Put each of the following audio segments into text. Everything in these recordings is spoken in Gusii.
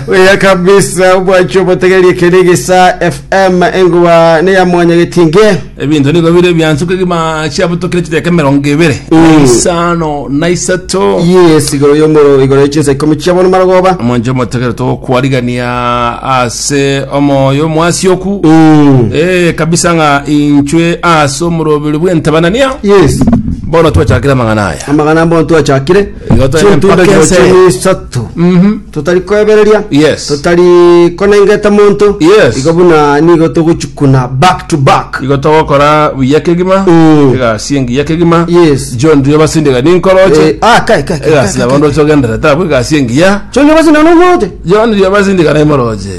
Oya kabisa obwacho obotegerie kende gesa FM engoba ne ya mwanya getinge. ebinto nigo bire biansuka egima chiabutokire chideka emerongo ebere Mm. isano na isato Yes, igoro yomoro igoro yechinsa ikomi chia bono marogoba. omonche omotegere togokwarigania ase omoyo omwasi oku Mm. Eh, kabisa ng'a inchwe ase omorobiri bw'entabanania Yes. bono twachakire amang'ana aya amagana mbono twachakire Igo tore chintundo mpaka chiro ense. chiria isato Mhm. totari kwebereria Yes. totari konengeta monto Yes. igo buna nigo togochukuna back to back igo togokora buya kegima Mm. egasi engiya kegima Yes. john rio basindega Eh, ninkoroche ah, kai, kai, kai, egasi kai, abondo kai. chogendera tabu egasi engiya chonde basina nomwote john rio basindega naimoroche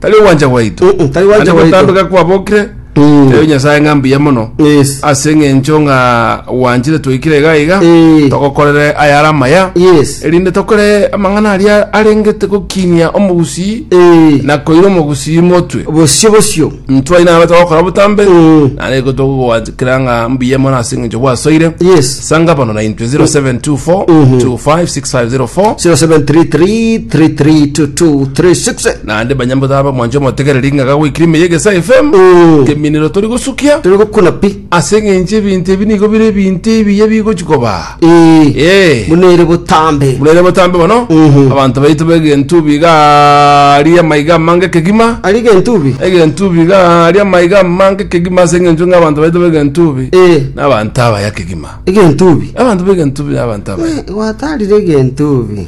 tari ogwancha gwaito Mm-mm, tari ogwancha Ande gwaito. gotambeka kwabokire Mm. tebia nyasae ng'a mbuya mono Yes. ase eng'encho ng'a gwanchire toikire iga iga Eh. togokorere ayare amaya Yes. erinde tokore amang'ana aria arengete gokinia omogusii Eh. na koira omogusii motwe Bosio bosio. ntwaina abe togokora botambe Mm. nare gotogogwancha Kera ng'a mbuya mono ase eng'encho bwasoire. Yes. Sanga bono na intwe 0724 256504 0733332236 naende banyambotabe omwancho omotegereri ng'a gagoikire ime y'egesa FM Mm. keminero tori gosukia turi gokuna pi ase eng'encho ebinto ebi nigo bire ebinto ebiya bigochi koba Ee, Ee. buna ere botambe. buna ere botambe mono Mhm. abanto baito b'egentubi gaaria amaiga amange kegima Ari gentubi. egentubi gaaria amaiga amange kegima ase eng'encho ng'a abanto baito b'egentubi Ee, n'abanto abaya kegima egentubi. abanto b'egentubi n'abanto abaya Gwatarire egentubi.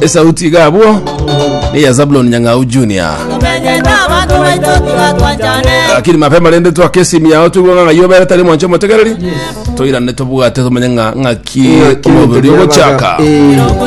esauti iga abwo neya zabulon nyang'au junior Tumenye n'abantu baito tugatwanjane lakini mapema rende twakesimi yao twigwa ng'a ng'ai obere tari mwancho omotegereri toirane tobwate tomenye ng'a ng'aki Ng'aki omobiri ogochaka. Eh.